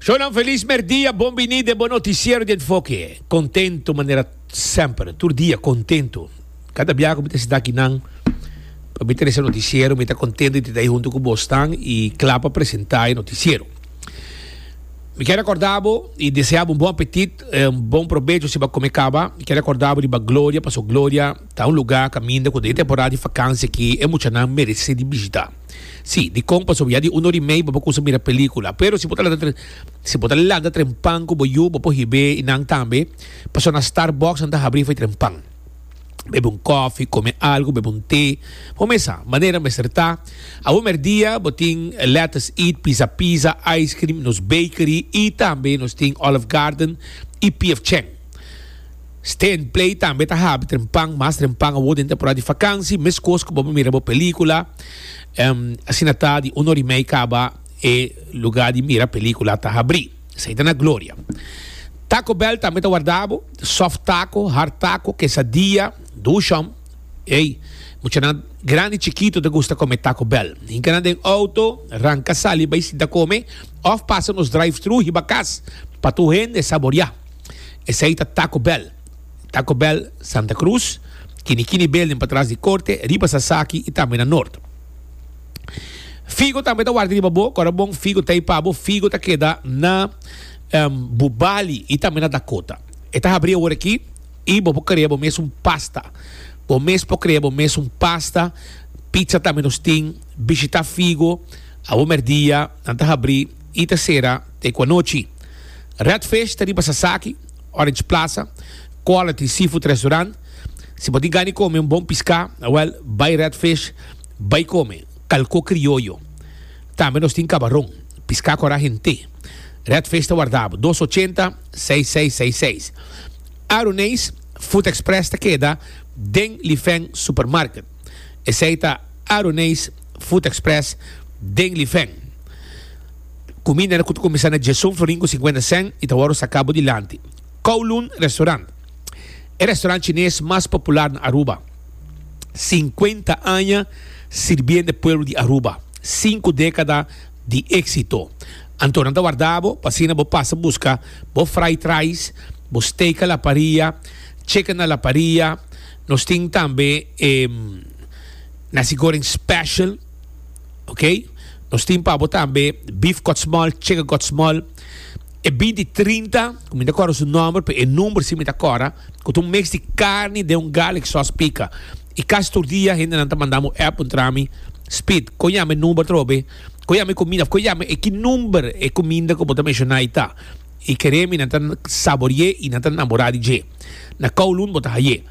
Shownan feliz merdia, bon bini den bo noticiero di enfoke. Contento manera semper, tur dia contento. Cada bia cu mi ta sita aki nan, pa mi trece noticiero, mi ta contento di ta junto cu bos tan y cla pa presenta e noticiero. Mi ke recorda bo y desea bo un bon apetit, un bon probecho si ba come caba. Mi ke recorda bo di ba gloria, paso gloria ta un lugar caminda cu den e temporada di vakantie aki e muchanan merece di bishita. Si, dikon pasobra ya di un or i mei bo por kusa mira pelíkula. Pero si bo ta lanta si bo ta lanta tren pan ku bo yu, bo por hib'é i nan tambe. Paso na Starbucks nan ta habrí for di tren pan. Bebe un kòfi, kome algu, bebe un té. Bo mester sa manera mester ta. Awor mèrdia bo tin Let Us Eat, Pizza Pizza, Ice Cream, nos Bakery i tambe nos tin Olive Garden i PF Chang. Stand play tambe ta habi den pan, mas den pan awor den temporada di vakansi, meskos ku bo mira bo pelíkula. Um, asina ta di un ora i mei kaba e lugá di mira pelíkula ta habrí. Esei ta na Gloria. Taco Bell tambe ta warda bo, soft taco, hard taco, quesadilla, dushon. Ey, muchanan grandi chikitu ta gusta kome Taco Bell. Hinka nan den outo, ranka sali bai sinta kome òf pasa nos drive-thru hiba kas pa tur hende saboriá. Esei ta Taco Bell, Taco Bell Santa Cruz, Kini Kini Building patras di Corte, riba Sasaki y tambe na Noord. Figo tambe ta warda riba bo, kora bon Figo ta e pa bo, Figo ta keda na Bubali y tambe na Dakota. E ta habri awor aki y bo por crea bo mes un pasta. Bo mes por crea bo mes un pasta, pizza tambe nos tin. Bishita Figo awor merdia, nan ta habri. y ta cera ta e cu anochi. Red Fish ta riba Sasaki, Orange Plaza, Quality Seafood Restaurant. Si bo tin gana di come un bon pisca, awel, bay Red Fish, bay come calco crioyo. Tambe nos tin cabaron, pisca cora hente. Red Fish ta warda bo, dos ochenta, seis seis seis seis. Aruneis Food Express ta keda den Lifeng Supermarket. Esei ta Aroneis Food Express den Lifen. Kuminda ku ta kuminsá na dje son florin ku sinkuenta sèn i ta wòrdu sakabo dilanti. Kowloon Restaurant, e restaurant chines mas popular na Aruba. Sinkuenta aña sirbiendo e pueblo di Aruba. Sinku dékada di éksito. Anto nan ta warda bo pa asina bo pasa buska bo fried rice, bo steak a la parrilla, chicken a la parrilla, Nos tin tambe e nasi goreng special ok nos tin pa bo tambe beef kotsmòl chicken kotsmòl e beef di trinta ku mi no ta kòrda su nòmber pero e number si mi ta kòrda ku ta un mix di karni den un garlic sòs pika i kas tur dia hendenan ta manda bo app puntra mi Speed kon yama e number atrobe kon yama e kumida of kon yama e ki number e kuminda ku bo ta menshoná ei ta E kere mi nan ta saborié i nan ta namorá di dje. Na Kowloon bo ta haié.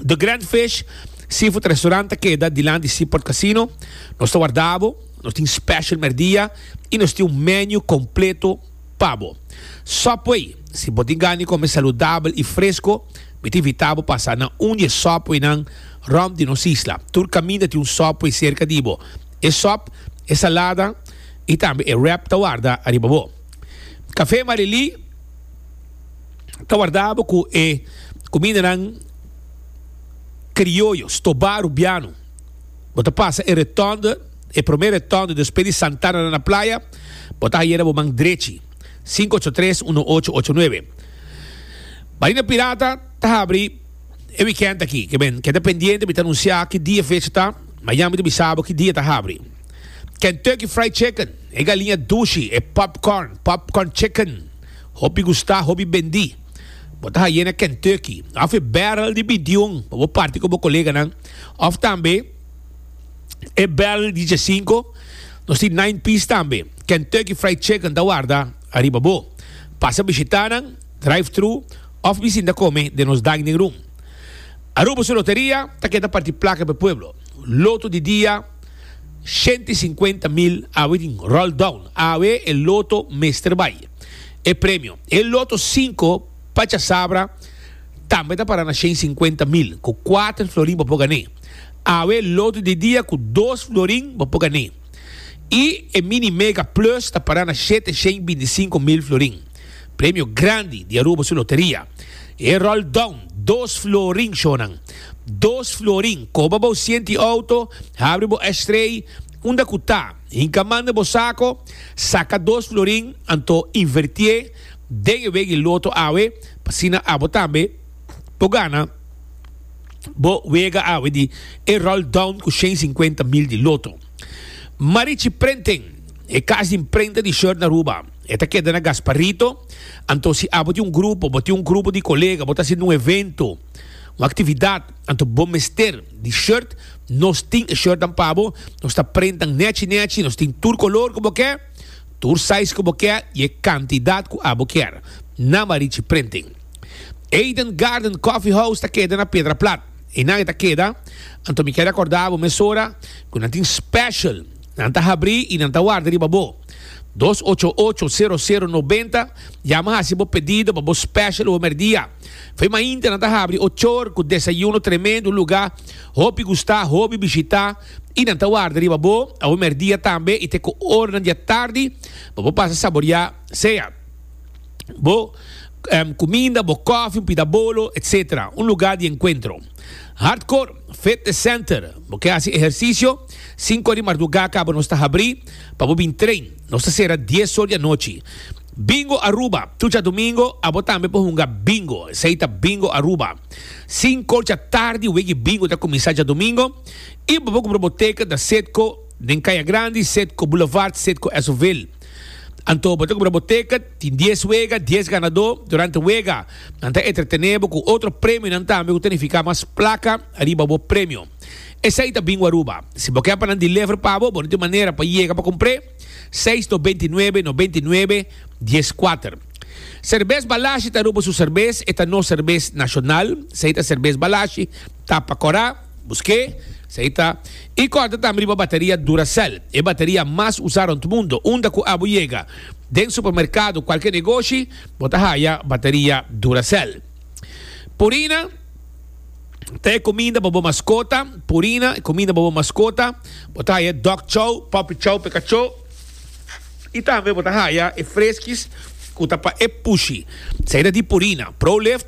The Grand Fish Seafood Restaurant ta keda dilant di Seaport Casino. Nos ta wardá bo, nos tin special mèrdia i nos tin un menu kompleto pa bo. Subway Si bo tin gana di kome saludabel i fresko, mi ta invitá bo pasa na un di e subwaynan rònt di nos isla. Tur kaminda tin un subway serka di bo. e sòp, e salada i tambe e wrap ta warda ariba bo. Kafé Marelí ta warda bo ku e kumindanan krioyo, stobá rubiano. Bo ta pasa e retònde, e promé retònde despues di Santana na playa, bo ta hayera bo man drechi. Sinku ocho tres uno ocho ocho nuebe. Marina Pirata ta habri. E weekend aki ke ben, keda pendiente, mi ta anuncia ki dia e fecha ta, ma ya mi ta bisa bo ki dia ta habri. Kentucky Fried Chicken, e galiña dushi, e popcorn, popcorn chicken, hopi gusta, hopi bendi. Bo ta haye na Kentucky, of e barrel di bintiun pa bo parti ku bo koleganan, of tambe e barrel di diesinko, nos tin nine piece tambe. Kentucky Fried Chicken ta warda ariba bo. Pasa bishita nan. drive-thru of bisin ta come den nos dining room. Aruba su loteria ta keda parti placa p'e pueblo. Loto di dia shenta i sinkuenta mil awe tin roll down, awe e loto mester bai. E premio, e loto sinku pa chasabra tambe ta para na shen sinkuenta mil cu kuater florin bo por gané. Awe loto di dia cu dos florin bo por gané. I e mini mega plus ta para na shete shen binti sinku mil florin. Premio grandi di Aruba su loteria. E roll down dos florin shonan. Dos florin koba bo sienti auto, habri bo ashtray, unda ku ta, hinka man na bo sako, saka dos florin anto invertié den e wega di loto awe pa asina abo tambe por gana bo wega awe di e roll down ku shen sinkuenta mil di loto. Marichi Printing, e kas di imprenta di shirt na Aruba. E ta keda na Gasparito. Anto si abo tin un grupo, bo tin un grupo di kolega, bo ta hasiendo un evento, un aktividat, anto bo mester di short, nos tin e shortnan pa bo. Nos ta prentan nèchi nèchi, nos tin tur kolor ku bo ke, tur sais ku bo ke i e kantidat ku abo kier. Nama Richie Printing. Eden Garden Coffee House ta keda na Pedra Plat. Einan e ta keda, anto mi keda kòrda abo mesora ku nan tin special. Nan ta habrí i nan ta warda riba bo. Dos ocho ocho, sero sero nobenta, Yama hasi bo pedido pa bo special homer dia. Fe mainta nan ta habri ochor ku desayuno tremendo lugá hopi gustá hobi bishitá i nan ta warda riba bo homer dia tambe i te ku ornan di atardi pa bo pasa saboriá sea. bo kuminda, bo kòfi, un pida bolo, etc. Un lugá di enkuentro. Hardcore Fitness Center, Bo ke hasi ehersisio? Sinku di mardugá kaba nos ta habrí pa bo bin train. Nos ta sera dies or di anochi. Bingo Aruba, Tucha dumingo abo tambe por hunga bingo, esei ta Bingo Aruba. Sinku dja tardi wiki bingo ta kuminsá djadumingo i bo por kumpra bo teket na Cedco den Kaya Grandi, Cedco Boulevard, Cedco Esoville. Anto bo ta kubra bo ticket, tin dies wega, dies ganadó. Durante wega nan ta entretené bo ku otro premionan tambe ku ta nifiká mas plaka riba bo premio. Esei ta Bingo Aruba. Si bo ke pa nan deliver pa bo, bo no tin manera pa yega pa kumpr'é? Seis no benti nuebe no benti nuebe dies kuater. Serbes Balashi ta Aruba su serbes, e ta nos serbes nashonal. Esei ta serbes Balashi, tapa kora. Busqué, si ahí ta. E corda tambe riba bateria Duracell, e bateria mas usá rond mundo. Unda cu abo yega, den supermercado, cualkier negoshi, bo ta haya bateria Duracell. Purina, Ta e cuminda pa bo mascota, purina, cuminda pa bo mascota. Bo ta haya dog chow, puppy chow p'e cachó. I tambe bo ta haya e freskis cu ta pa e pushi. Si ahí ta di purina. Prolift,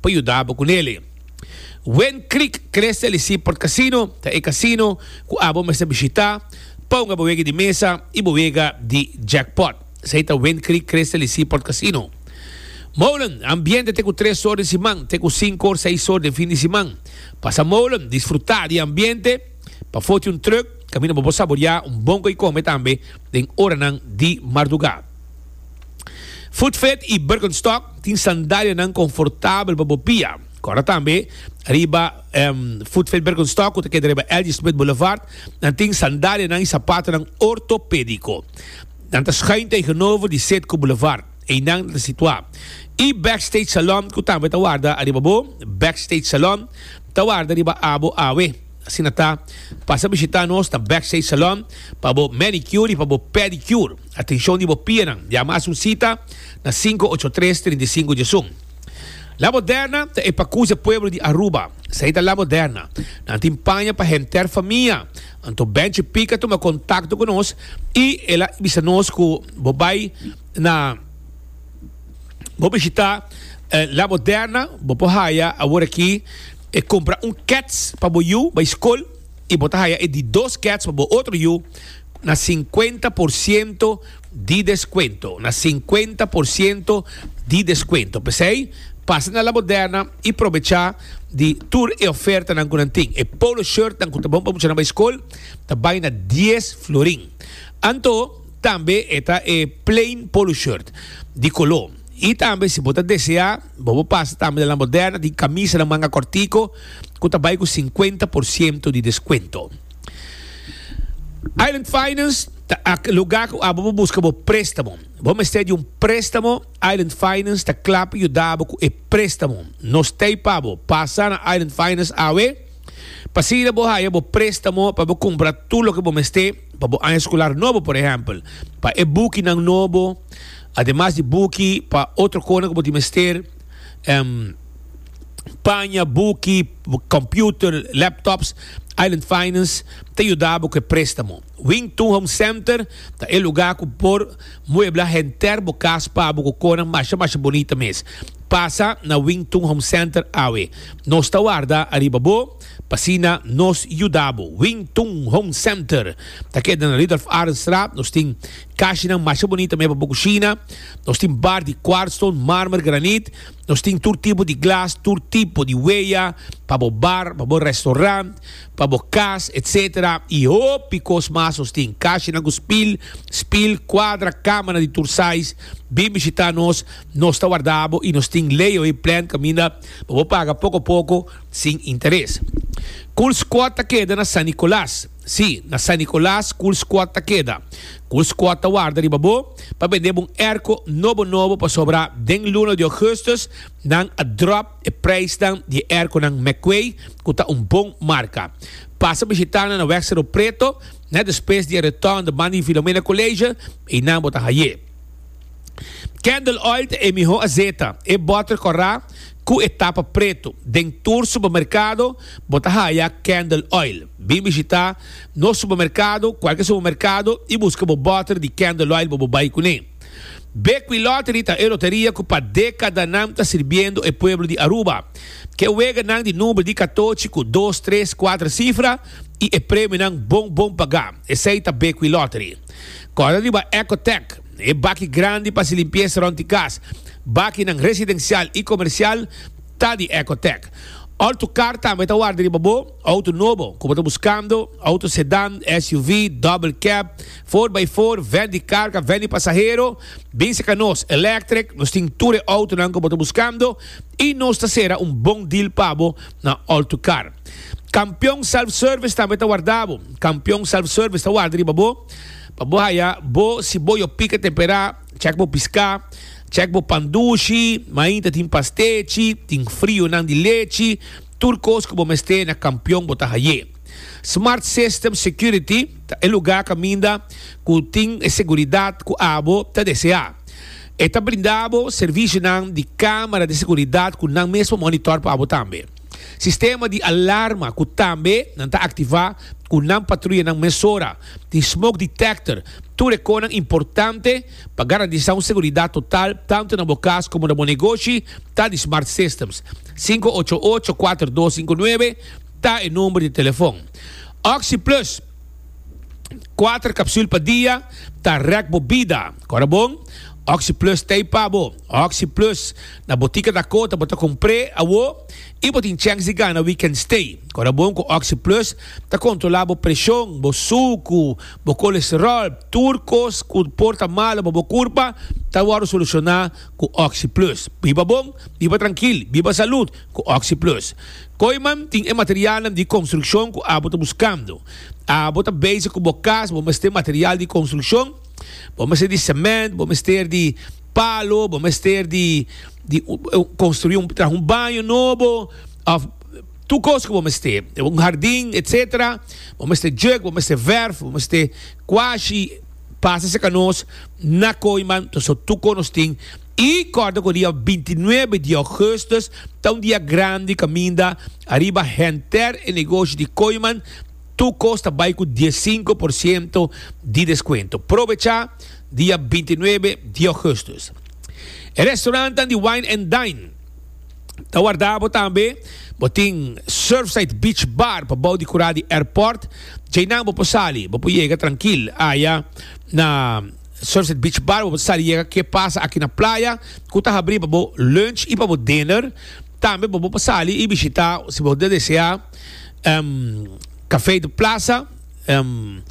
pa yuda bo cu nele. Wen Creek crece ali si por casino ta e casino cu abo mester bishita pa hunga bo wega di mesa y bo wega di jackpot. Esey ta Wen Creek crece ali si por casino. Molen, ambiente te cu tres or den siman te cu cinco or seis or den fin di siman. Pasa molen, disfruta di e ambiente, pa foti un truck, caminda bo por saboria un bon coycome tambe den oranan di marduga. Footfit i Birkenstock tin sandalianan konfortabel pa bo pia. Kòrda tambe riba Footfit Birkenstock ku ta keda riba L.G. Smith Boulevard, nan tin sandalianan i sapatonan ortopédiko. Nan ta schuin tegenover di Setco Boulevard, einan nan ta situá. E Backstage Salon ku tambe ta warda ariba bo, Backstage Salon, ta warda riba abo awe. Asina ta, pasa bishita nos na Backstage Salon pa bo manicure i pa bo pedicure. Atenshon di bo pianan. Yama hasi un sita na sinku ocho tres trinta i sinku djesun. La Moderna ta e pakus e pueblo di Aruba. Esei ta La Moderna. Nan tin paña pa henter famia. Anto Benchi Pick a tuma kontakto ku nos i el a bisa nos ku bo bai na bo bishita La Moderna. Bo por haya aworakí. E compra un kets pa bo yu bay scol y bo ta haya e di dos kets pa bo otro yu na cincuenta por ciento di descuento, na cincuenta por ciento di descuento. Pesey pasa na La Moderna y probecha di tur e ofertanan cu nan tin. E polo shirtnan cu ta bon pa muchanan bay scol ta bay na dies florin. Anto tambe e ta e plain polo shirt di color. Y tambe si bo ta desea. Bo por pasa tambe na La Moderna tin kamisanan manga kòrtiku ku ta bai ku sinkuenta por siento di deskuento. Island Finance ta ak lugá ku abo por buska bo préstamo. Bo mester di un préstamo, Island Finance ta kla pa yuda bo ku e préstamo. Nos ta ei pa bo. Pasa na Island Finance awe pa siña bo haya bo préstamo pa bo kumpra tur loke bo mester pa bo aña skolar nobo, por ehèmpel, pa e bukinan nobo. Ademas di buki pa otro konan ku bo tin mester, paña, buki, computer, laptops, Island Finance ta yuda bo ku e prestamo. Wing Tun Home Center ta e luga ku por muebla henter bo kas pa bo ku konan masha masha bonita mes. Pasa na Wing Tun Home Center awe. Nos ta warda ariba bo pa asina nos yuda bo. Wing Tun Home Center ta keda na Ridolf Arendstraat, nos tin. Kashinan masha bunita meba bo kushina. Nos tin bar di kwartstone, marmer, granit. Nos tin tur tipo di glas, tur tipo di weya pa bo bar, pa bo restorant, pa bo kas, etc. I hopi kos mas nos tin. Kashinan ku spil, spil, kwadra, kamanan di tur sais. Bin bishita nos, nos ta warda bo i nos tin layaway plan kaminda pa bo paga poko poko sin interes. Cool Squad ta keda na San Nicolas. Sí, na San Nicolas cu el squad ta keda. Cu el squad ta warda riba bo pa bendeba un erco nobo nobo pasobra den luna di augustus nan a drop e prijsnan di e erconan McQuay cu ta un bon marca. Pasa bishitanan na Wek Cerro Preto net despues di e return de man di Filomena College y nan bo ta haye. Candle oil ta e miho azeta. E botter corá cu e tapa preto. Den tur supermercado bo ta haya Candle oil. Bin bishita nos supermercado, cualke supermercado, y busca bo botter di Candle oil bo bo bay cune. Bequi Lottery ta e loteria cu pa decadanan ta sirbiendo e pueblo di Aruba. Ke weganan di number di catochi cu dos, tres, cuater cifra y e premionan bon bon pagá. Esey ta Bequi Lottery. Corda riba Ecotech. E baki grandi pa hasi limpiesa rond di kas, bakinan residensial i komersial, ta di Ecotec. Auto kar tambe ta warda riba bo. Auto nobo ku bo ta buskando, auto sedan, SUV, double cab, four by four, vèn di karga, vèn di pasahero, bin seka nos. Electric, nos tin tur e autonan ku bo ta buskando i nos ta sera un bon deal pa bo na Auto Kar. Kampion Self Service tambe ta warda bo. Kampion Self Service ta warda riba bo. Pa bo haya bo si bo yo pica tempera, check bo pisca, check bo pan dushi, main ta tin pastechi, tin frionan di lechi, tur cos cu bo mester na campion bo ta haye. Smart System Security ta e lugar caminda cu tin e seguridad cu abo ta desea. E ta brinda abo servicionan di camera di seguridad cu nan mesmo monitor pa abo tambe. Sistema di alarma ku tambe nan ta aktivá ku nan patruyanan mesora tin smoke detector, tur e konan importante pa garantisá un seguridat total tantu na bo kas komo na bo negoshi ta di Smart Systems. Sinku ocho ocho kuater dos sinku nuebe ta e number di telefon. Oxi Plus, kuater kapsul pa dia ta rèk bo bida. Kòrda bon? Oxi Plus ta ei pa bo. Oxi Plus. Na botica Dakota bo ta compre awo y bo tin chance di gana weekend stay. Corabon cu Oxy Plus ta controla bo presion, bo sucu, bo colesterol, tur cos cu por ta malo pa bo curpa ta wordo soluciona cu Oxy Plus. Biba bon, biba trankil, biba salud cu Oxy Plus. Koiman tin e materialnan di construccion cu abo ta buscando. Abo ta bezig cu bo cas, bo mester material di construccion, bo mester di cement, bo mester di. palo bo mester di di construi un traha un baño nobo of tur cos cu bo mester un hardin etcetera bo mester juek bo mester verf bo mester cuashi pasa cerca nos na coiman ta so tur cos nos tin y corda cu dia binti y nuebe di augustus ta un dia grandi caminda ariba henter e negoshi di coiman Tur kos ta bai ku dies sinku por siento di deskuento. Probechá dia binti nuebe di ougùstus. E restorantan di Wine and Dine ta warda bo tambe. Bo tin Surfside Beach Bar pa bou di kurá di airport. Djei nan bo por sali, bo por yega trankil aya na Surfside Beach Bar. Bo por sali yega ke pasa aki na playa ku ta habrí pa bo lunch i pa bo dinner. Tambe bo por sali i bishitá, si bo ta deseá. em, Café de Plaza, em,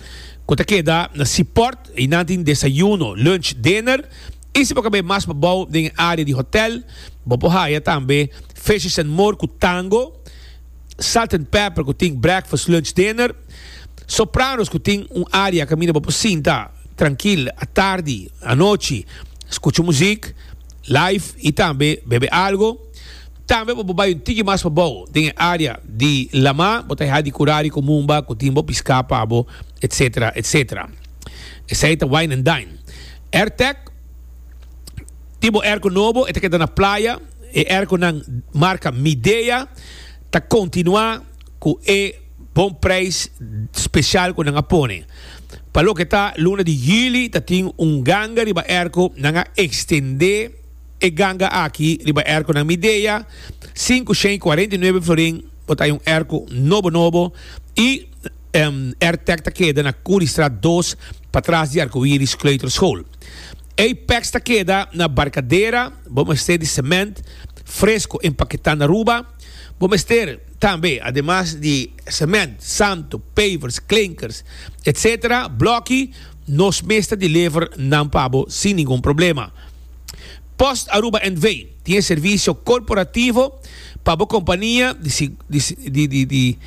cu ta keda na Seaport, y nan tin desayuno, lunch, dinner. Y si bo cabé mas pa bao den e area di hotel, bo por haya tambe Fishes and More cu Tango, Salt and Pepper cu tin breakfast, lunch, dinner, Sopranos cu tin un area caminda bo por sinta trankil atardi, anochi, scucha muziek, live y tambe bebe algo. Tambe bo por bai un tiki mas pabou den e área di lamá. Bo ta hia di kurá riku mumba ku tin bo piská pa bo, etsetera, etsetera. Esei ta wine and dine. Airtec, tin bo erko nobo, e ta keda na playa. E erkonan marka Midea ta kontinuá ku e bon preis spesial ku nan a pone. Pa loke ta luna di juli ta tin un ganga riba erko, nan a ekstendé. E ganga aki riba erkonan Midea, sinku shen i kuarenta i nuebe florin, bo ta haya un erko nobo nobo, i Airtec ta keda na Curiestraat dos, patras di Arcoiris Kleuterschool. Apex ta keda na Barcadera, bo mester di cement fresco empaqueta na Aruba, bo mester tambe ademas di cement, santo, pavers, klinkers, etc. Bloki, nos mes ta deliver nan pa bo sin ningun problema. Post Aruba NV. tin e servisio korporativo pa bo kompania di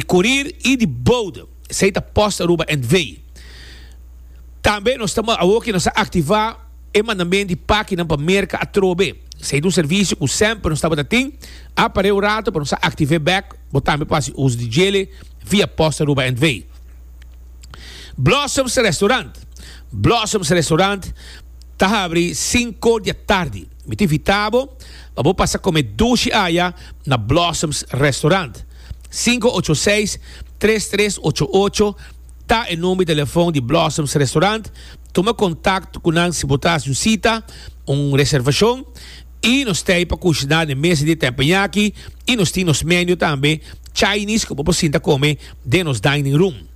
kurir i di boude. Esei ta Post Aruba NV. Tambe nos ta awoki nos a aktivá e mandamen di pakinan pa Merka atrobe. Esei ta un servisio ku semper nos tabata tin, a par'é un ratu pa nos a aktiv'é bèk. Bo tambe por hasi uso di djele via Post Aruba NV. Blossoms Restaurant Blossoms Restaurant Ta habri sinko di atardi. Mi ta invita bo pa bo pasa come dushi aya na Blossoms Restaurant. Sinko ocho seis, tres tres ocho ocho ta e number di telefon di Blossoms Restaurant. Tuma contacto cu nan si bo ta haci un cita, un reservacion. Y nos ta ey pa cushina den mesa di e tempo yaki. Y nos tin nos menu tambe, Chinese, cu bo por sinta come den nos dining room.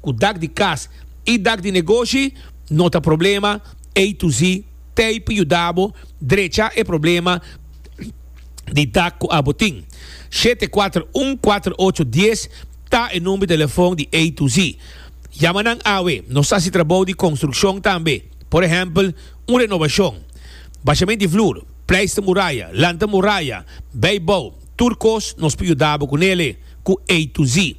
Cu dak di cas y dak di negoshi no ta problema, A to Z tape yuda bo drecha e problema di dak cu abo tin. Shete kuater un kuater ocho dies ta e number di telefon di A to Z. Yama nan awe. Nos ta haci trabou di construccion tambe, por ehempel un renovacion, bashament di vloer, pleister muraya, lanta muraya, bay bou, tur cos nos por yuda bo cu nele cu A to Z.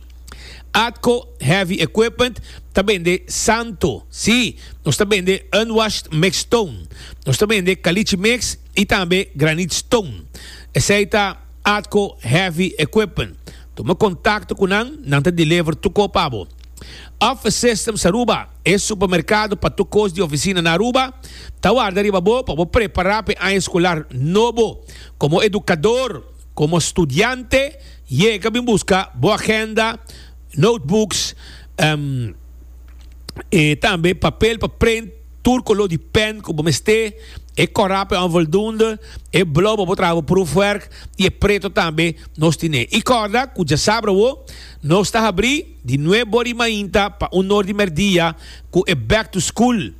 Atco Heavy Equipment ta bende Santo, si, nos ta bende unwashed mixed stone, nos ta bende caliche mix y tambe granite stone. Esey ta Atco Heavy Equipment. Tuma contacto cu nan, nan ta deliver tu co pa bo. Office Systems Aruba, e supermercado pa tu cos di oficina na Aruba, ta warda riba bo pa bo prepara pa e aña escolar nobo como educador. Komo studiante, yega bin buska bo agenda, notebooks, e tambe papel pa prent tur koló di pèn ku bo mester, e kòrá pa e onvoldunde, e blou pa bo traha bo proefwèrk i e preto tambe nos tine. I kòrda ku djasabra awo nos ta habrí di nuebori mainta pa un nor di merdia ku e back to school.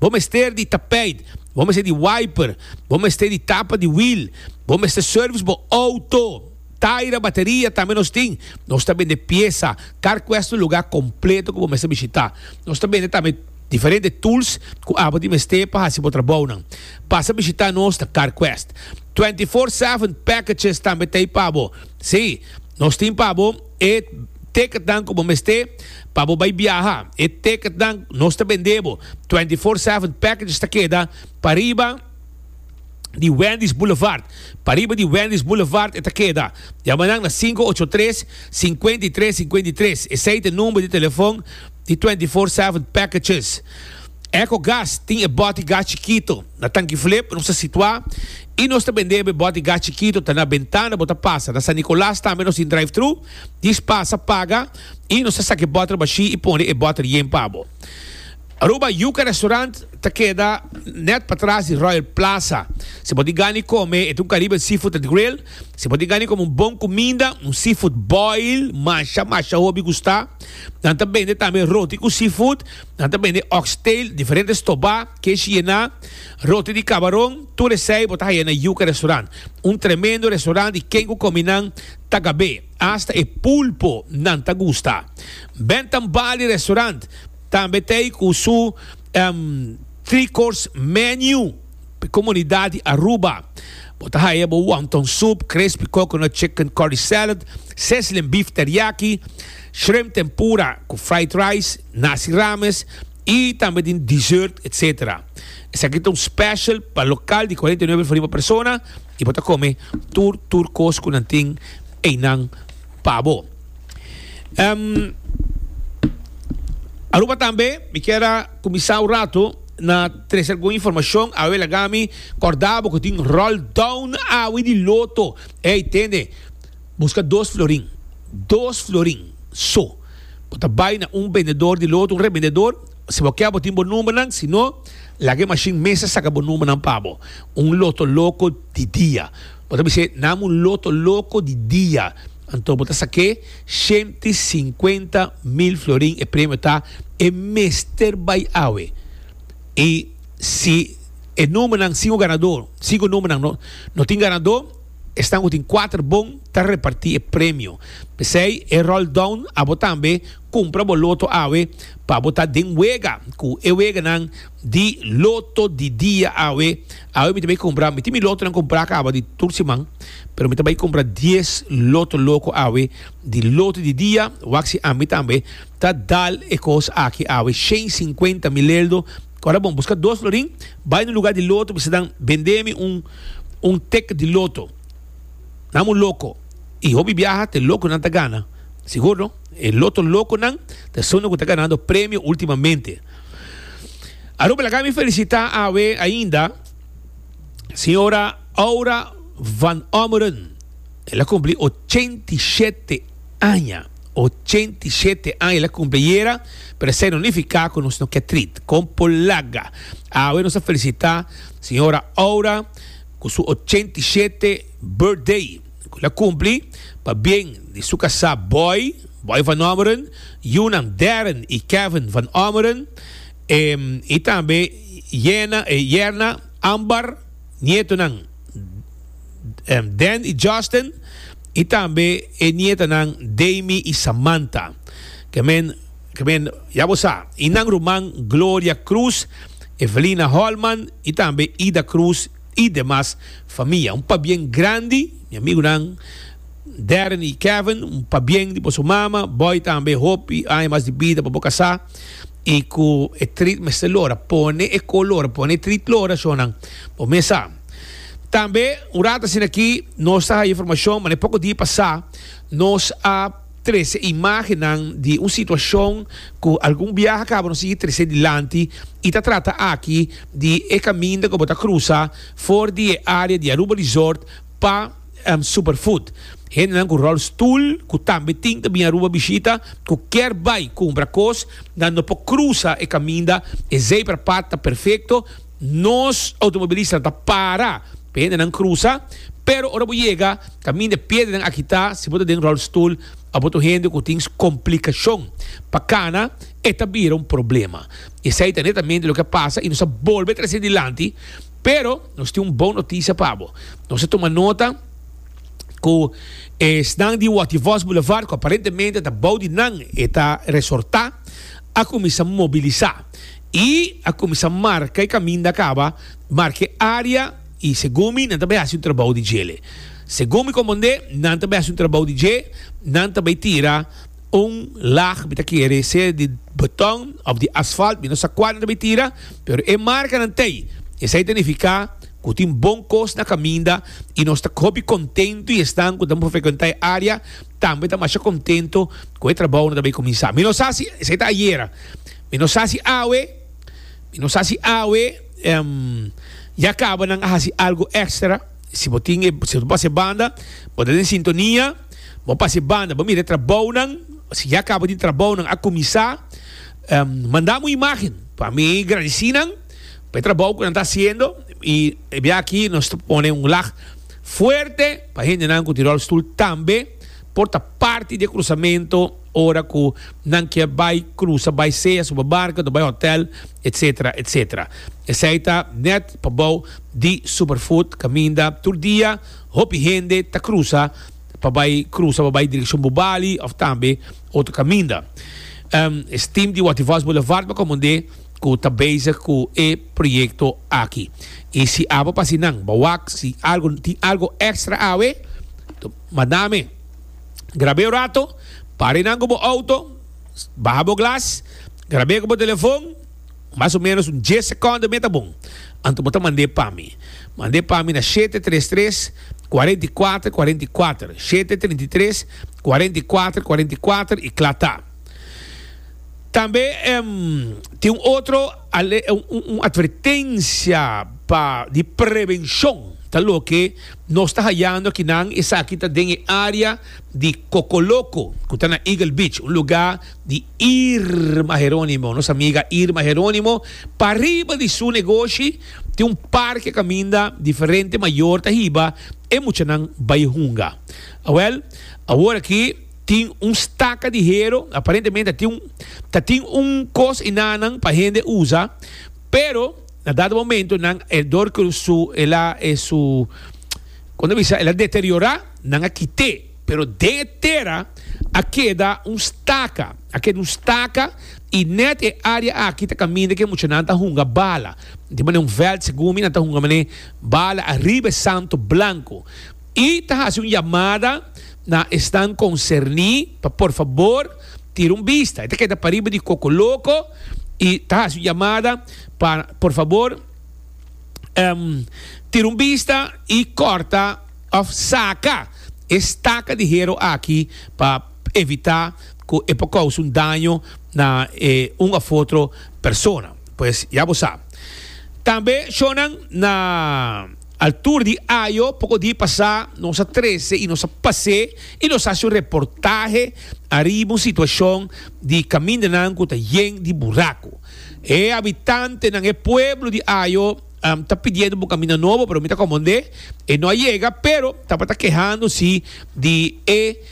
Bo mester di tapijt, bo mester di wiper, bo mester di tapa di wiel, bo mester service bo auto, taira, bateria tambe nos tin. Nos ta bende piesa, carquest un lugar completo cu bo mester bishita. Nos ta bende tambe diferente tools cu abo tin mester pa haci bo trabounan. Pasa bishita nos na Carquest. Twenty four seven packages tambe ta ey pa bo. Sí, nos tin pa bo. E teketnan ku bo mester pa bo bai biaha. E teketnan nos ta bendé bo. Twenty Four Seven Packages ta keda pariba di Wendy's Boulevard. Pariba di Wendy's Boulevard e ta keda. Yama nan na sinku ocho tres, sinkuenta i tres, sinkuenta i tres. Esei ta number di telefon di Twenty Four Seven Packages. Ecogas tin e bòt di gas chikito na tanki flip nos ta situá i nos ta bend'é be bòt di gas chikito ta na bentana bo ta pasa. Na San Nicolas tambe nos tin drive-thru, dis pasa, paga i nos ta saka e bòter bashí i pone e bòter yen pa bo. Aruba Yuca Restaurant ta keda nèt patras di Royal Plaza. Si bo tin gana di kome, e ta un Caribbean seafood at grill. Si bo tin gana di kome un bon kuminda, un seafood boil, masha masha hopi gustá. Nan ta bende tambe roti ku seafood. Nan ta bende oxtail, diferente stobá, keshi yená, roti di kabaron, tur esei bo ta haya na Yuca Restaurant. Un tremendo restaurant di ken ku komi nan ta gab'é, asta e pulpo nan ta gusta. Ben ta Mbali Restaurant tambe t'ei ku su Three Course Menu p'e komunidat di Aruba. Bo ta haya bo wonton soup, crispy coconut chicken curry salad, sizzling beef teriyaki, shrimp tempura ku fried rice. Naci Rames y tambe tin dessert etc. Esaki ta un special pa local di cuarenta y nuebe riba persona y bo ta come tur tur cos cu nan tin eynan pa bo. Em, Aruba tambe mi kier a cuminsa un rato na trece algun informacion awe lagami corda bo cu tin roll down awe di loto. Ey tende. Buska dos florin, dos florin so. Bo ta bai na un bendedor di loto, un rebendedor. Si bo ke bo tin bo numbernan, si no laga e mashin mester saka bo numbernan pa bo. Un loto loko di dia. Bo ta bisa e nam un loto loko di dia. Anto bo ta sake shenti i sinkuenta mil florin. E premio ta e mester bai awe. I si e numbernan sin un ganador, sinku numbernan no tin ganador. Esnan cu tin cuater bon ta reparti e premio. P'esey e rolldown abo tambe cumpra bo loto awe pa bo ta den wega cu e weganan di loto di dia awe. Awe mi ta bay cumpra, mi tin mi lotonan cumpra caba di tur siman, pero mi ta bay cumpra dies loto loco awe di loto di dia, wak si ami tambe ta dal e cos aki awe shen cincuenta mileldo. Ora bon, busca dos florin, bay na lugar di loto, bisa dan bende mi un. un tek di loto. Nan un loko i hopi biaha te lokonan ta gana. Sigur no? E loto lokonan ta esuntu ku ta ganando premio ultimamente. Aruba laga mi felisitá awe ainda señora Aura van Ommeren. El a kumpli ochenta i shete Aña, ochenta i shete aña la cumpli ayera, pero esey no nifica cu nos no ke trit. Con por laga, awe nos a felicita Sra. Aura cu su ochenta i shete birthday cu la cumpli pa bien di su casa boy, Boy van Ommeren, yunan Darren y Kevin van Ommeren, y tambe yerna Ambar, nietonan. Dan i Justin, i tambe e nietanan Damy i Samantha. Kemen, kemen, ya bo sa, i nan ruman Gloria Cruz, Evelina Holman i tambe Ida Cruz i demas famia. Un pabien grandi, mi amigunan Darren i Kevin, un pabien di boso mama, bo tambe hopi aña mas di bida pa bo kasá. y cu e trit mester lora pone e color pone e trit lora so nan bo mes sa tambe un rato asina aki nos ta hay informacion mane poco dia pasa nos a trece imagennan di un situacion cu algun biaha cu abo no sigui trece dilanti y ta trata aki di e caminda cu bo ta crusa for di e area di Aruba Resort pa Superfood. Hendenan cu rol stoel cu tambe tin ta bin Aruba bishita cu kier bay cumpra cos dan no por cruza e caminda, e zebra pad ta perfecto, nos automobilistanan ta para pa hendenan cruza, pero ora bo yega caminda e piedrenan a kita si bo ta den rol stoel of bo ta un hende cu tin complicacion pa cana e ta bira un problema. Esey ta netamente loke a pasa y nos ta bolbe trece dilanti. Pero nos tin un bon notisia pa bo. Nos a tuma nota cu esnan di Wativos Boulevard, cu aparentemente ta bou di nan e ta resorta, a cuminsa mobilisa y a cuminsa marca e caminda caba, marca e area y segun mi nan ta bay haci un trabou di djele. Segun mi componde nan ta bay haci un trabou di dje, nan ta bay tira Un lag mi ta kere ser di beton of di asfalt, mi no sa cual nan ta bay tira, pero e marcanan ta ey. Esey ta nifica cu e tin bon cos na caminda y nos ta hopi contento y esnan cu ta por frecuenta e area tambe ta masha contento cu e trabao no ta bay cuminsa. Mi no sa si esey ta ayera, mi no sa si awe, mi no sa si awe ya caba nan a haci algo extra. Si bo tin e, si bo ta pasa e banda, bo ta den sintonia. Bo pas e banda, bo mira e trabounan, si ya kaba di trabounan a kuminsá, mandam un imágen pa mi gradisí nan pa e trabou ku nan ta hasiendo i e bia aki nos ta pone un lag fuerte pa hendenan ku tin ròlstul tambe por ta parti di e krusamentu ora ku nan kier bai krusa bai sea supermarket o bai hòtèl etsetera etsetera esei ta nèt pa bou di Superfood kaminda tur dia. Hopi hende ta krusa pa bai krusa pa bai direkshon Bubali òf tambe otro kaminda. Es tim di Wativos Boulevard pa komand'é ku ta bezig ku e proyekto aki. I si abo pa si nan ba wak si algu tin algu èkstra awe, manda mi. Grab'é un rato, para nan ku bo outo, baha bo glas, grab'é ku bo telefon. Mas o menos un dies secondo mi e ta bon. Anto bo ta mand'e pa mi. Mand'e pa mi na shete tres tres, cuarenta y cuater, cuarenta y cuater, shete trinta y tres, cuarenta y cuater, cuarenta y cuater y cla ta. Tambe em tin un otro ale un advertencia pa di prevencion ta loke nos ta hayando akinan esaki ta den e area di Cocoloco cu ta na Eagle Beach un lugar di Irma Heronimo. Nos amiga Irma Heronimo pa riba di su negoshi tin un parke kaminda diferente mayor ta hiba e muchanan bai hunga. Awel, awor aki tin un staka di hero, aparentemente ta tin un ta tin un kos enanan pa hende usa, pero na dado momento nan e dor ku su el a e su kon ta bisa el a deteriora nan a kite. Pero den e tera a keda un staka, a keda un staka, i nèt e área aki ta kaminda ku e muchanan ta hunga bala. Tin manera un vèlt, segun mi, nan ta hunga manera bala ariba e santo blanku. I ta hasi un yamada na esnan konserní pa por fabor tira un bista. E ta keda pariba di Kokoloko i ta hasi un yamada pa por fabor tira un bista i kòrta. Of saca e staca di hero aki pa evita cu e por causa un daño na e un of otro persona. Pues ya bo sa. Tambe shonan na altura di ayo poco di pasa nos a trece y nos a pase y nos a haci un reportahe ariba un situacion di camindanan cu ta yen di buracu. E habitantenan, e pueblo di ayo. ta pidiendo bo camina nobo pero mi ta comondé e no a yega pero tabata kehando si di e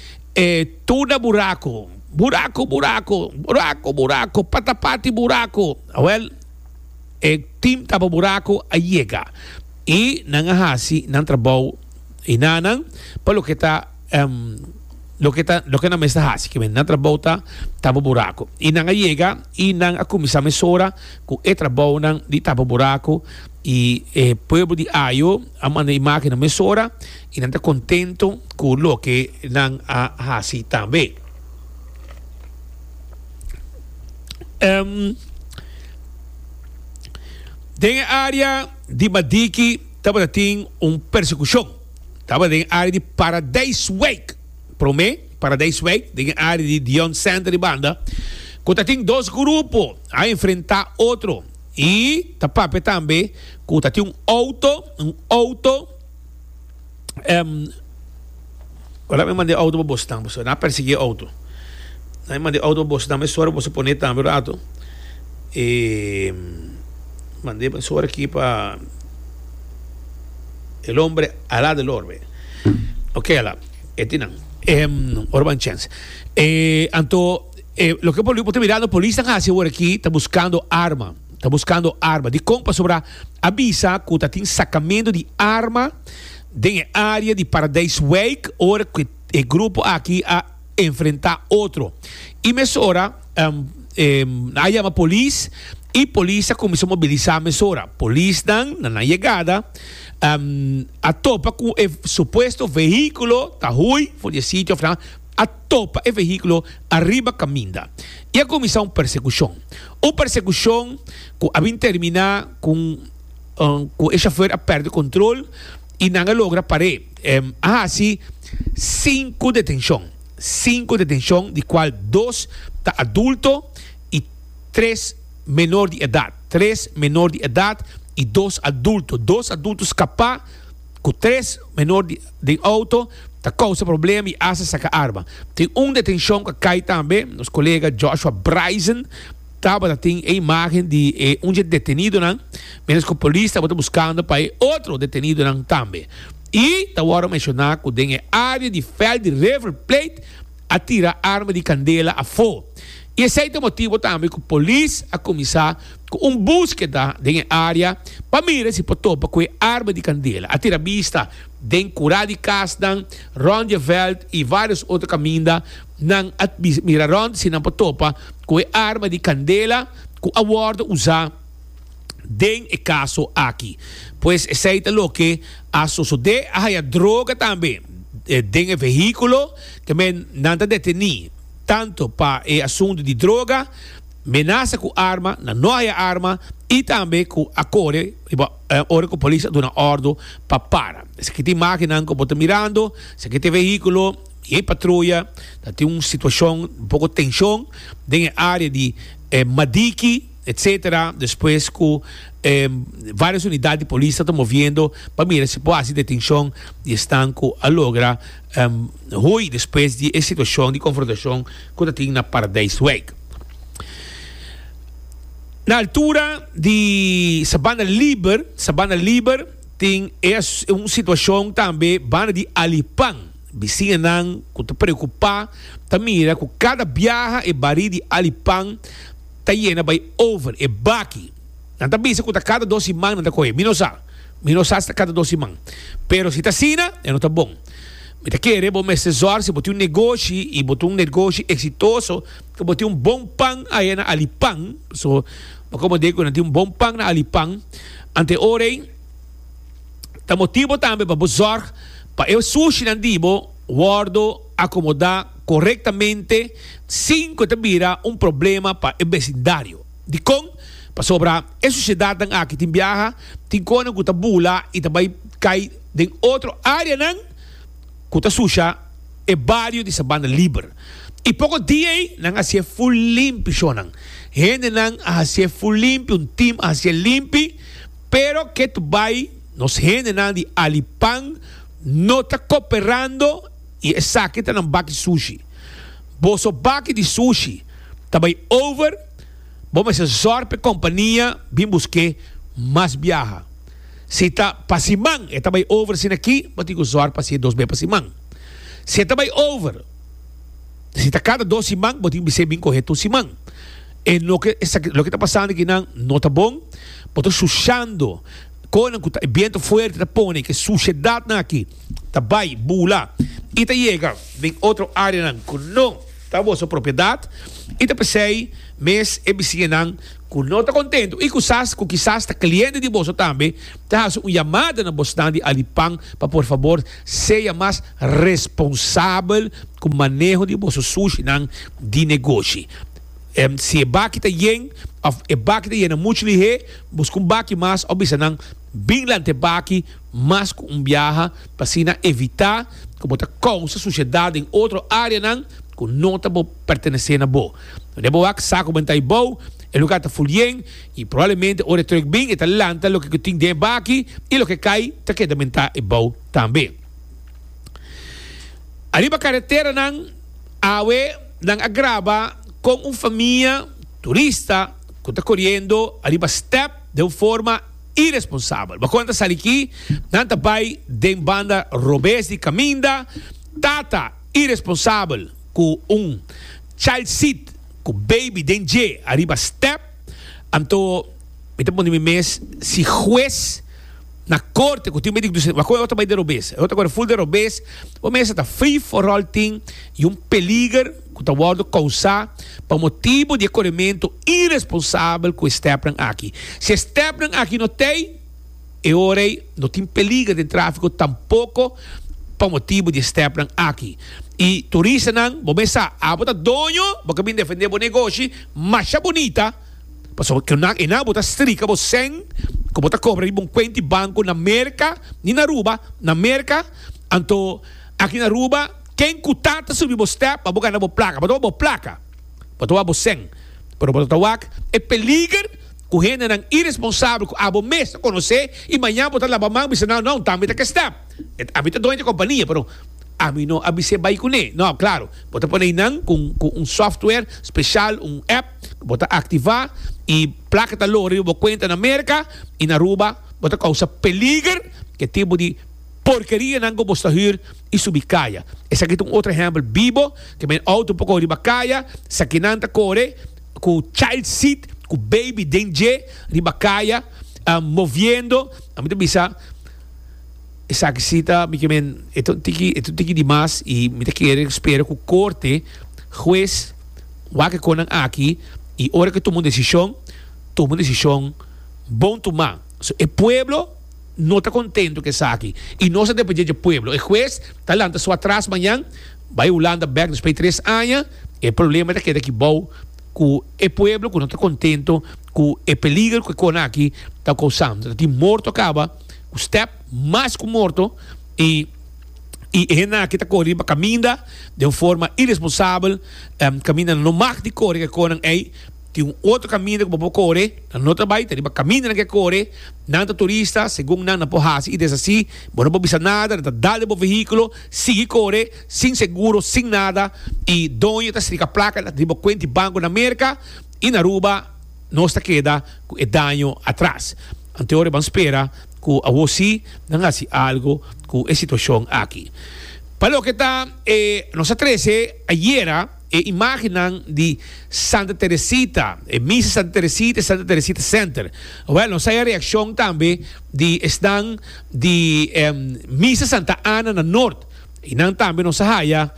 tuda buraco buraco buraco buraco buraco patapati buraco awel e team tapa buraco a yega y nan a haci nan trabou y nanan pa loke ta. em, loke ta, loke nan mester hasi, ke nan trabou ta tapa buraku. I nan a yega i nan a kuminsá mesora ku e trabounan di tapa buraku, i e pueblo di Ajo a manda e mákina mesora, i nan ta kontentu ku loke nan a hasi tambe. Em, den e área di Madiki tabata tin un persekushon. Taba den área di Paradijswijk, promé, Paradijswijk, den e área di Dion Center di banda, ku ta tin dos grupo a enfrentá otro i ta papia tambe ku ta tin un outo, un outo, em, ora mi manda e outo pa boso tambe, boso na persiguí e outo, na mi manda e outo pa boso tambe, sor pa boso pon'é tambe un ratu, e mand'é, sor aki pa. El hombre ala del orbe. Ok ala. E tin nan. E ora ban chance. E anto e lo que poli, bote mirando polis tan hace ahora aquí ta buscando arma. Ta buscando arma. Di con pasobra avisa cu ta tin sacamento di arma den e área di Paradijswijk ora cu e grupo aki a enfrenta otro y mesora a yama polis y polis a cuminsa mobilisa mesora polisnan na nan yegada a topa cu e supuesto vehiculo ta hui for di e sitio of nan a topa e vehiculo ariba caminda y a cuminsa un persecucion un persecucion cu a bin termina cu cu e shofer a perde control. y nan a logra par'é em a haci cinco detencion, cinco detencion di cual dos ta adulto y tres menor di edad, tres menor di edad y dos adulto, dos adulto scapá cu tres menor di den auto ta causa problema y hasta saca arma. Tin un detencion cu a cay tambe nos colega Joshua Braisen. Tabata tin e imagen di e un dje detenidonan mientras cu polis tabata buscando pa e otro detenidonan tambe y ta wordo menciona cu den e area di veld di River Plate a tira arma di candela afo y esey ta e motibo tambe cu polis a cuminsa cu un buskeda den e area pa mira si por topa cu e arma di candela. A tira bista den cura di casnan rond di e veld y varios otro caminda. Nan a mira rònt si nan por topa ku e arma di kandela ku a wòrdu usá den e kaso aki. Pues esei ta loke a sosodé. A haya droga tambe den e vehíkulo. Te men nan ta detení tantu pa e asuntu di droga, menasa ku arma, nan no haya arma i tambe ku a kore riba ora ku polis a duna òrdu pa para. Esaki ta e imágennan ku bo ta mirando. Esaki ta e vehíkulo. Y e patruya ta tin un situacion un poco tension den e area di Madiki etc. Despues cu varios unidad di polis ta ta moviendo pa mira si por haci detencion di esnan cu a logra hui despues di e situacion di confrontacion cu ta tin na Paradijswijk. Na altura di Sabana Liber, Sabana Liber tin un situacion tambe banda di Alipan. Bisiñanan ku ta preokupá ta mira ku kada biaha e barí di alipan ta yena bai over. E baki nan ta bisa ku ta kada dos siman nan ta kohe. Mi no sa. Mi no sa si ta kada dos siman. Pero si ta asina e no ta bon. Mi ta kere bo mester zòr si bo tin un negoshi i bo ta un negoshi eksitoso ku bo tin un bon pan aya na alipan. So, bo komprendé ku nan tin un bon pan na alipan anteorei. ta motibo tambe pa bo zorg pa e sushinan di bo wordo akomodá korektamente sin ku e ta bira un problema pa e besindario. Dikon? Pasobra e sushedatnan aki tin biaha tin konan ku ta bula i ta bai kai den otro áreanan ku ta susha e bario di Sabana Liber. I poko dia ei nan hasié ful limpi shónan. Hendenan a hasié ful limpi, un tim a hasié limpi. Pero ke ta bai nos hendenan di Alipan no ta koperando i esaki ta nan baki sushi. Boso baki di sushi ta bai over, bo mester zòr pa e kompania bin busk'é mas biaha. Si ta pa siman e ta bai over asina akí, bo tin ku zòr pa hasié dos be pa siman. Si e ta bai over. Si ta cada dos siman bo tin bisey bin coge tur siman. E no ke esaki loke ta pasando aki nan no ta bon. Bo ta sushando conan cu ta e biento fuerte ta pone ke sushedad nan aki ta bay bula y ta yega den otro area nan cu no ta boso propiedad y ta pesey mes e bisiña nan cu no ta contento y cusas cu kisas ta cliente di boso tambe ta haci un yamada na bosnan di Alipan pa por favor sea mas Responsabel ku maneho di boso sushinan di negoshi. Si e baki ta yen òf e baki ta yena muchu lihé, buska un baki mas òf bisa nan bin lanta e baki mas ku un biaha pa asina evitá ku bo ta kousa sushedat den otro áreanan ku no ta bo pertenesé na bo. Unda e bo wak sa ku banta ibou, e lugá ta ful yen i probablemente ora e tròk bin e ta lanta loke ku tin den e baki i loke kai ta keda banta ibou tambe. Ariba kareteranan awe nan a graba kon un famia turista ku ta koriendo ariba stèp den un forma iresponsabel. Bakua nan ta sali aki? Nan ta bai den banda robes di kaminda. Tata iresponsabel ku un child seat ku baby den dje ariba stèp. Anto mi ta pone mi mes si hues. na korte ku tin medik dusen wak e otro bai den robes e otro kore ful den robes bo mester ta free for all tin y un peliger ku ta wordo kousa pa motibu di e korementu iresponsabel ku e stepnan aki si e stepnan aki no tei e ora ei no tin peliger den trafiko tampoko pa motibu di e stepnan aki y turistanan bo mes sa abo ta doño bo ke bin defende bo negoshi masha bunita. Pasobra ku nan enan bo ta strika bo sèn ku bo ta kobra riba un kuent di banku na Merka ni na Aruba, na Merka, anto aki na Aruba ken ku ta ta subi bo stèp a bo gana bo plaka, bo ta wak bo plaka, bo ta wak bo sèn, pero bo ta wak e peliger ku hendenan iresponsabel ku abo mes ta konosé i mañan bo ta laba man bisa nan, nau, tambe ta ke stèp, ami ta doño di e kompania pero ami no a bis'é bai kuné, nau, klaru, bo ta ponei nan ku un software speshal, un app. Bo ta activa y placa ta loga riba bo cuenta na America y na Aruba bo ta causa peliger cu e tipo di porkerianan cu bo sta huur y subi caya. Esaki ta un otro ehempel bibo cu mi auto por cor riba caya, sakinan ta core cu child seat cu baby den dje riba caya moviendo, mi ta bisa. Esaki si ta mi kimen e ta un tiki e ta un tiki di mas i mi ta kere ku spera ku korte hues wak e konan aki i ora ke tuma un desishon tuma un desishon bon tumá so e pueblo no ta kontentu ku esaki i nos ta depende dje pueblo e hues ta lanta su atras mañan bai hulanda bek despues di tres aña e problema ta keda aki bou ku e pueblo ku no ta kontentu ku e peligro ku e konan aki ta kousando ta tin morto kaba ku step mas ku morto i i e hende aki ta kore riba kaminda den un forma iresponsabel kaminda nan no mag di kore ke konan ei tin un otro kaminda ku bo por kore nan no ta bai ta riba kaminda nan ke kore nan ta turista segun nan nan por hasi i desasi bo no por bisa nada nan ta dal den bo vehikulo sigui kore sin seguro sin nada i doño ta strika plaka riba bo kuent di banko na Merka i na Aruba nos ta keda ku e daño atras. Anto ora ban spera cu awo si nan haci algo cu e situacion aki. Pa loke ta e nos a trece ayera e imagennan di Santa Teresita, e misa Santa Teresita y Santa Teresita Center. Wel, nos a haya reaccion tambe di esnan di misa Santa Ana na Noord. I nan tambe nos a haya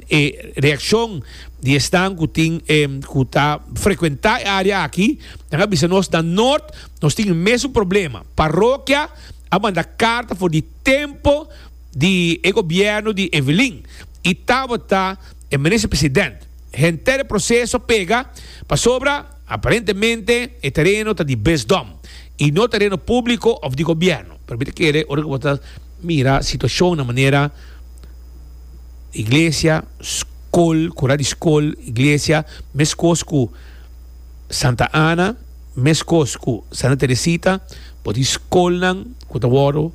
e reaccion di esnan cu tin cu ta frecuenta e area aki, nan a bisa nos na Noord nos tin e mesun problema. Parokia a manda carta for di tempo di e gobierno di Evelyn i tabata e Minister President. Henter e proceso pega pasobra aparentemente e tereno ta di besdom i no tereno publico of di gobierno. Permite kere ora cu bo ta. mira situacion na manera iglesia, scol, cura di scol, iglesia, mescos cu Santa Ana, mescos cu Santa Teresita, por tin scolnan cu ta wordo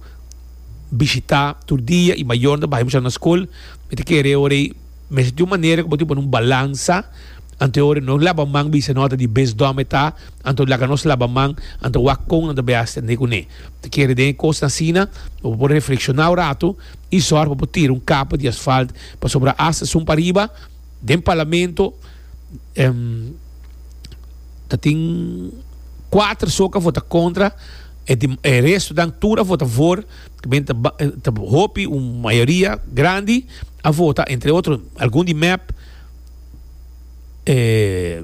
bishita tur dia y mayornan ta baha y muchanan na scol, mi ta kere ora ey. Mester tin un manera ku bo tin pone un balansa, anto ora nos laba man bisa nota di bes dòme ta, anto laga nos laba man, anto wak kon nan ta bai hasta ne ku ne. Ta kere den e kosnan asina bo por reflekshoná un ratu i sòr pa bo tira un kapa di asfalt pasobra hasta sun pariba den parlamento ta tin kuater so ku a vota kontra e restonan tur a vota a favor. Kmen ta ta hopi un mayoria grandi a vota entre otro algun di mep, e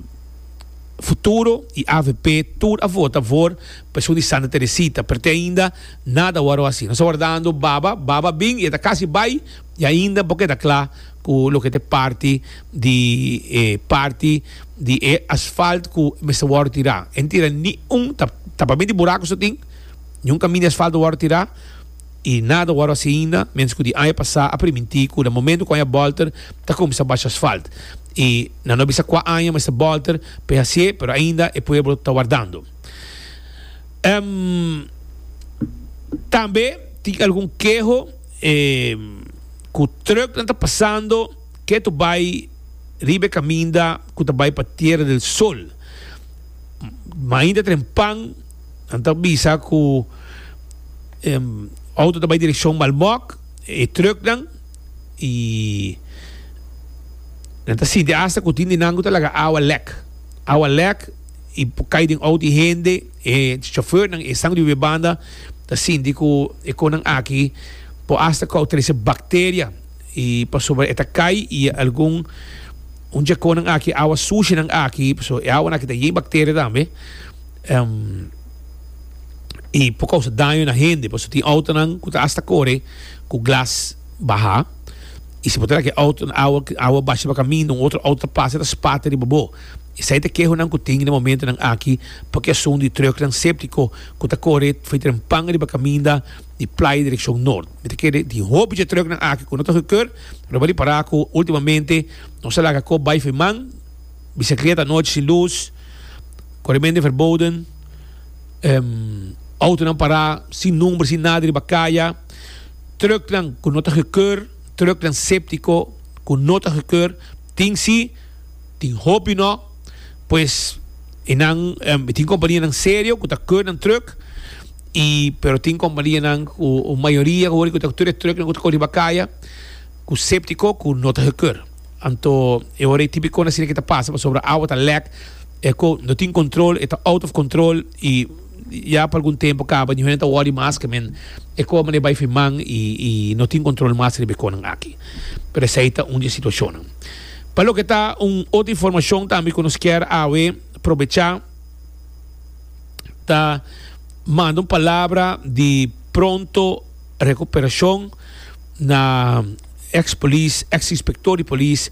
futuro y avp tur a vota for pensioen di Santa Teresita pero te ainda nada wou a haci nos ta wardando baba baba bin y e ta casi bay y ainda bo keda cla cu loke ta e parti di e parti di e asfalt cu mester wou tira e no tira ni un tapamento di buraco so tin. Niun kaminda di asfalto wòrdu tirá i nada wòrdu hasi ainda, ménos ku di aña pasá a primintí ku na momentu ku aña bòlter ta kuminsá basha asfalt i nan no a bisa kua aña mester bòlter pa e hasié pero ainda e pueblo ta wardando. Tambe tin algun keho ku trùknan ta pasando ketu bai riba e kaminda ku ta bai pa Tierra del Sol, ma ainda trempan. Nan ta bisa cu e auto ta bay direccion Malbok, e trucknan, y nan ta sinti hasta cu tin di nan cu ta laga awa lek. Awa lek y por cay den auto e hende, e chofernan, e esnan di wiwe banda ta sinti cu e conan aki por hasta cau trece bacteria y pasobra e ta cay y algun un dje conan aki, awa sushinan aki, so e awanan aki ta yen bacteria tambe. Um, y por causa daño na hende, pasobra tin autonan cu ta hasta core cu glas baha, y si bo ta na ki auto na awa, awa basha riba caminda, un otro auto ta pasa y ta spata riba bo. Esey ta e kehonan cu tin den e momentonan aki pa ki asun di trucknan septico cu ta core fey trempan riba caminda di Playa direccion Noord. Mi ta kere tin hopi dje trucknan aki cu no ta goedkeur, lo bo a ripara cu ultimamente nos a laga cob bay feman, Bicicleta nochi sin luz, coremende verboden, autonan para sin number, sin nada riba caya, trucknan cu no ta gekeur, trucknan septico cu no ta gekeur, tin si, tin hopi no, pues e nan e tin companianan serio cu ta keur nan truck y pero tin companianan cu mayoria cu ta tur e trucknan cu ta cor riba caya cu septico cu no ta gekeur. Anto e ora e típikonan asina ke ta pasa pasobra awa ta lek, e ko no tin control, e ta out of control i ya pa algun tempo kaba niun hende ta wòri mas ke men e ko manera bai fin man i i no tin control mas riba e konan aki. Pero esei ta un di e situashonnan. Pa loke ta un otro informashon tambe ku nos kier awe probechá ta manda un palabra di pronto. Recuperashon na ex polis, ex inspector di polis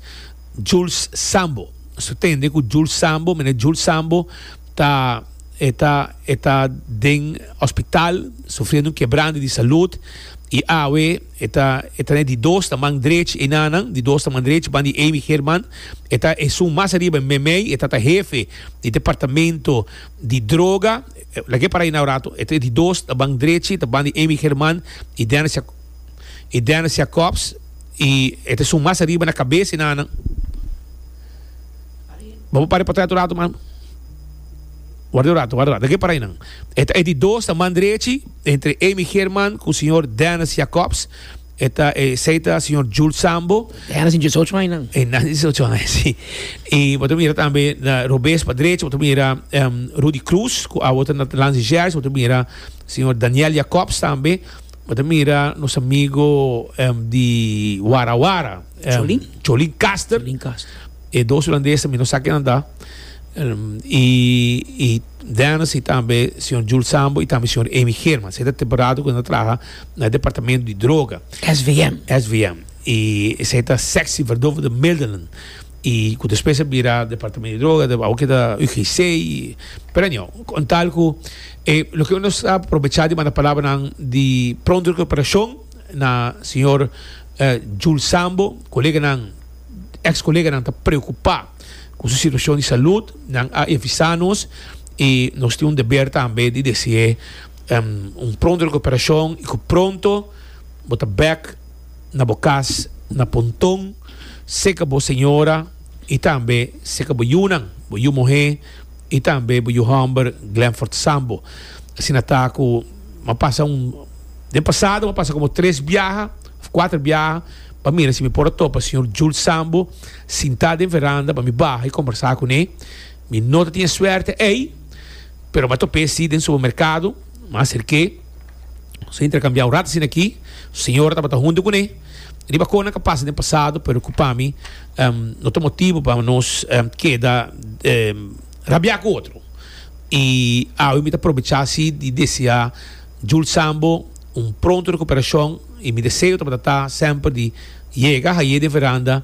Jules Sambo. Nos ta tende cu Jules Sambo, meneer Jules Sambo, ta e ta e ta den hospital sufriendo un kebrande di salud y awe e ta e ta na e di dos na man drech enanan, di dos na man drech ban di Amy German. E ta esun mas ariba e meimei, e ta ta hefe di departamento di droga. Lag'é para ahi na un ratu. E tres di dos ta ban drechi, e ta ban di Amy Germán i Dennis i Dennis Jacobs i e ta esun mas ariba na kabes di nannan. Bo por para portret un ratu mas? Warda un ratu, warda un ratu. Lag'é para ahi nan. E ta e di dos ta man drechi, entre Amy Germán ku señor Dennis Jacobs. E ta e sei ta señor Jules Sambo. E naci 18 aña nan. E naci 18 aña, si. I bo ta mira tambe na robes pa derecha, bo ta mira um, Rudy Cruz, ku awo ta na Lance Jazz, bo ta mira señor Daniel Jacobs tambe, bo ta mira nos amigo um, di Wara Wara, um, Cholin. Cholin Caster. Cholin Caster. E dos Holandes tambe, no sa kinan ta. Um, i, i Dennis, i tambe señor Jules Sambo, i tambe señor Amy German. Sei ta temporada ku nan traha. na departamento di droga SVM SVM y esei ta sexy verdove de middelen y cu despues a bira departamento di droga de wou keda UGC y pero anyo con tal cu eh, lo que nos a aprovecha di manda palabranan di pronto recuperacion na señor eh, Jules Sambo coleganan ex coleganan ta preocupa cu su situacion di salud nan a avisa nos y nos tin un deber tambe di deci e Un pronto recuperashon y cu pronto bo ta bek na bo cas na Punton, seca bo señora y tambe seca bo yunan, bo yu muhe y tambe bo yu homber Glenford Sambo. Asina ta cu m'a pasa un, den pasado m'a pasa como tres biaha of cuater biaha pa mira si mi por a topa señor Jules Sambo sinta den veranda pa mi baha y combersa cu ne. Mi no ta tin e suerte ey. Pero m'a top'é sí den supermerkado, m'a aserk'é, nos a interkambiá un rat asina akí, su señora tabata huntu kuné, riba konan ka pasa den pasado, pero ku pa mi no ta motibu pa nos keda rabiá ku otro. I awe mi ta probechá sí di deseá Jules Sambo un pronto rekuperashon, i mi deseo tabata ta semper di yega hañ'é den veranda,